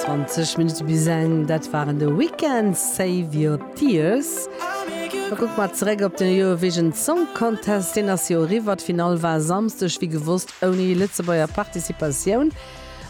20 Minutte bis eng, dat waren The Weeknd, Save Your Tears. Da kucke mer zeréck op den Eurovision Song Contest, deen ass jo eriwwer. D'Finall war Samsdeg, wéi gewosst, ouni Lëtzebuerger Participatioun.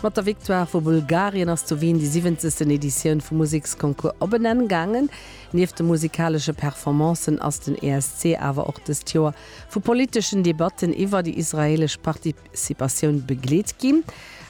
Mat der Victoire vu Bulgarien ass zu Wien déi siwwenzegsten Editioun vum Museksconcours op en Enn gaangen. Nieft de musikalesche Performancen ass den ESC awer och dëst Joer vu politeschen Debatten iwwer déi israeelesch Parti, Participatioun begleet ginn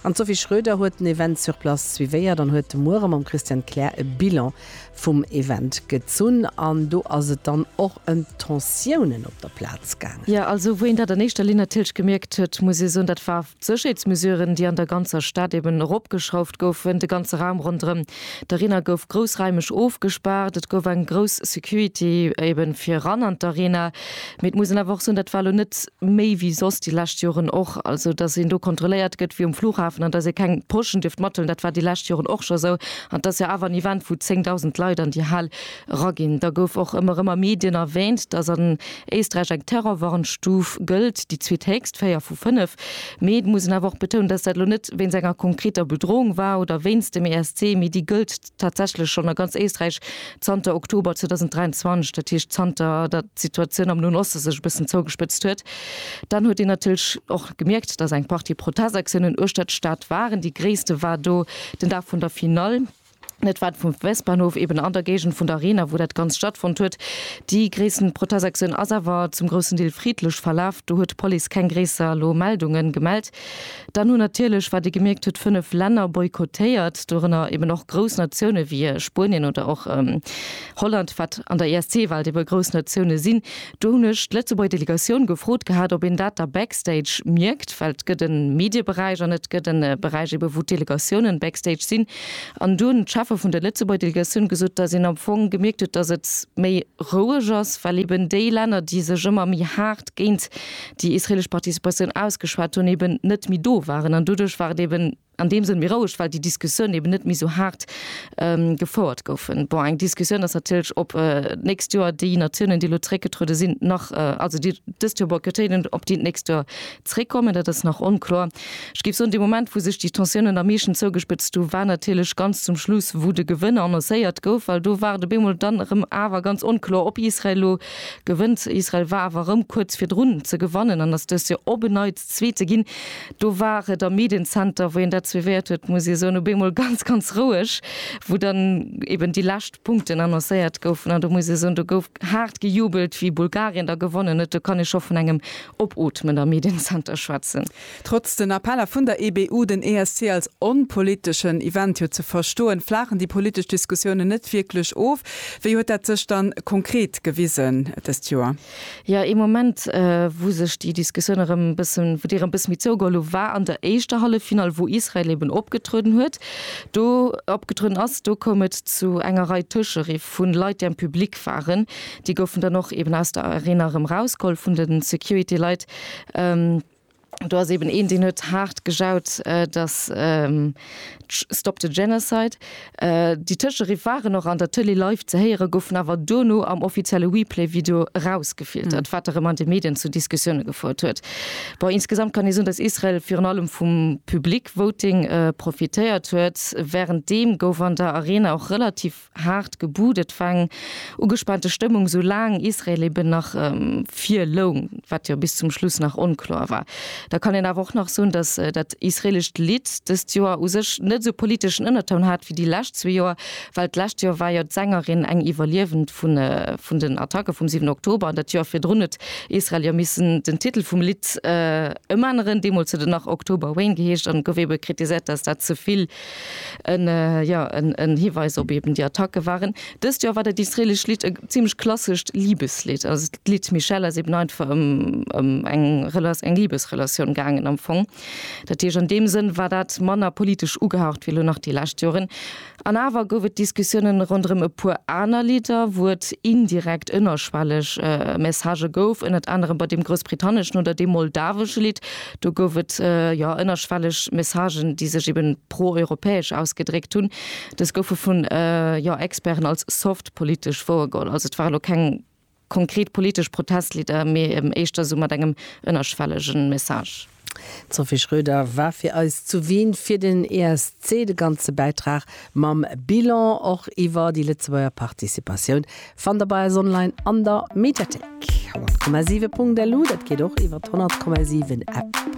an d'Sophie Schroeder huet den Event sur place suivéiert an huet de Muere mam Christian Kler e Bilan vum Event gezunn an do ass et dann och ëm d'Tensiounen op der Plaz gaangen. Jo, also wou een dat an éischter Linn natierlech gemierkt huet, muss ee soen, dat war d'Sécherheetsmesuren, déi an der ganzer Stad eben eropgeschrauft goufen. De ganze Raum ronderëm d'Arena gouf groussraimeg ofgespaart, et gouf eng grouss Security eben fir eran an d'Arena. Mee et muss een awer och soen, dat war elo net méi wéi soss déi lescht Joren och. Also datt een do kontrolléiert gëtt wéi um Flughafen an datt ee keng Poschen dierft mathuelen, dat war déi lescht Joren och scho esou. An et ass jo awer en Event, wou 10.000 Leit an déi Hal eraginn. Da gouf och ëmmer erëm a Medien erwäänt, datt an Éisträich eng Terrorwarnstuf gëllt, déi zweethéchst, véier vu fënnef. Mee et muss een awer och betounen, datt dat elo net wéinst enger konkreter Bedroung war oder wéinst dem ESC, mee déi gëllt, tatsächlech schonn a ganz Éisträich zanter Oktober 2023, dat heescht zanter datt d'Situatioun am Noen Oste sech e bëssen zougespëtzt huet, dann huet een natierlech och gemierkt, datt eng Partie Protestaktiounen uechter d'Stad waren. Déi gréisste war do den Dag vun der Finall. Dat war vum Westbahnhof eben an der Géigend vun der Arena, wou dat Ganzt stattfonnt huet. Déi gréissten Protestaktioun ass awer zum groussen Deel friddlech verlaf. Do huet d'Police keng gréisser elo Meldungen gemellt. Dann hunn natierlech, wat ee gemierkt huet, fënnef Länner boykottéiert, dorënner eben och grouss Natioune wéi Spuenien oder och Holland, wat an der ESC-Welt ebe grouss Natioune sinn. Do hunn ech d'Lëtzebuerger Delegatioun gefrot gehat, ob een dat da backstage mierkt, well et gëtt e Medieberäich an et gëtt e Beräich ebe wou d'Delegatioune backstage sinn. An do hunn d'Cheffe vun der Lëtzebuerger Delegatioun gesot, datt een am Fong gemierkt huet, datt et méi roueg ass, well eben déi Länner, déi sech ëmmer méi haart géint déi israelesch Participatioun ausgeschwat hunn, eben net méi do waren. An doduerch war et eben an deem Sënn méi roueg, well déi Diskussiounen eben net méi esou haart gefouert goufen. Bon, eng Diskussioun ass natierlech, ob d'nächst Joer déi Natiounen, déi elo zréckgetruede sinn, nach, also déi dëst Joer boykottéieren, ob déi d'nächst Joer zréckkommen. Dat ass nach onkloer. Ech géif soen, dee Moment, wou sech déi Tensiounen am meeschten zougespëtzt hu war natierlech ganz zum Schluss, wou de Gewënner annoncéiert gouf, well do war et op eemol dann erëm awer ganz onkloer, ob Israel elo Gewënnt Israel, war awer erëm kuerz virdrun ze gewannen an ass dëst Joer op en Neits Zweete ginn. Do war et am Medien-Center, wou een dat suivéiert huet, muss ee soen, op eemol ganz, ganz roueg, wou dann eben déi lescht Punkten annoncéiert goufen. An do muss ee soen, do gouf haart gejubelt, wéi Bulgarien da gewonnen huet. Do kann ee scho vun engem Opootmen am Medien-Center schwätzen. Trotz den Appeller vun der EBU, den ESC als onpoliteschen Event jo ze verstoen, flaachen déi politesch Diskussiounen net wierklech of. Wéi huet dat sech dann konkret gewisen dëst Joer? Jo, ee Moment, wou sech déi Diskussioun erëm e bëssen, wou déi erëm e bëssen méi zougeholl hu war an der éischter Halleffinall, wou Israel eben opgetrueden huet, do opgetrueden ass. Do koum et zu enger Rei Tëscheriff vu Leit, déi am Public waren. Déi goufen dann och eben aus der Arena erëm rausgeholl vun de Security-Leit. Do ass eben een, deen huet haart gejaut, dass Stop the Genocide. Déi tëscheriff waren och an der Tëlee live ze héieren, goufen awer dono am offizielle Replay-Video erausgefiltert, wat erëm an de Medien zu Diskussioune gefouert huet. Bon, insgesamt kann ee soen, dass Israel virun allem vum Public Voting profitéiert huet. Wärenddeem gouf an der Arena och relativ Haart gebudet war eng ugespaante Stëmmung, sou laang Israel eben nach vir loung, wat jo bis zum Schluss nach onkloer war. Da kann een awer och nach soen, datt dat israelescht Lidd dëst Joer u sech net esou politeschen Ënnertoun hat wéi déi lescht zwee Joer, well d'lescht Joer war jo d'Sängerin eng Iwwerliewend vun den Attacke vum 7 Oktober an dat Joer virdrun huet Israel jo missen den Titel vum Lidd ëmänneren. Deemools huet et nach October Rain geheescht an et gouf ebe kritiséiert, datt dat ze vill ja, en Hiweis op eben déi Attacke waren. Dëst Joer war dat israeelescht Lidd e zimmlech klassescht Libeslidd. Also d'Lidd Michelle ass eben einfach ëm ëm eng Rela eng Libesrelatioun gaangen am Fong. Dat heescht, an deem Sënn war dat manner politesch ugehaucht wéi elo nach déi lescht Joren. An awer gouf et Diskussiounen ronderëm e puer aner Lidder, wou et indirekt ënnerschwelleg Messagë gouf, ënnert anerem bei deem groussbritanneschen oder deem moldawesche Lidd. Do gouf et jo ënnerschwelleg Messagen, déi sech eben pro-europäesch ausgedréckt hunn. Dës goufe vun, jo, Experten als soft politesch wouergeholl. Also et ware lo keng konkret politesch Protestlidder, mee eben éischter esou mat engem ënnerschwellegen Message. D'Sophie Schröder war fir eis zu Wien fir den ESC. De ganze Bäitrag mam Bilan och iwwer déi Lëtzebuerger Participatioun Fannt der bei eis online an der Mediathéik 100,7.lu. Dat geet och iwwert 100,7 App.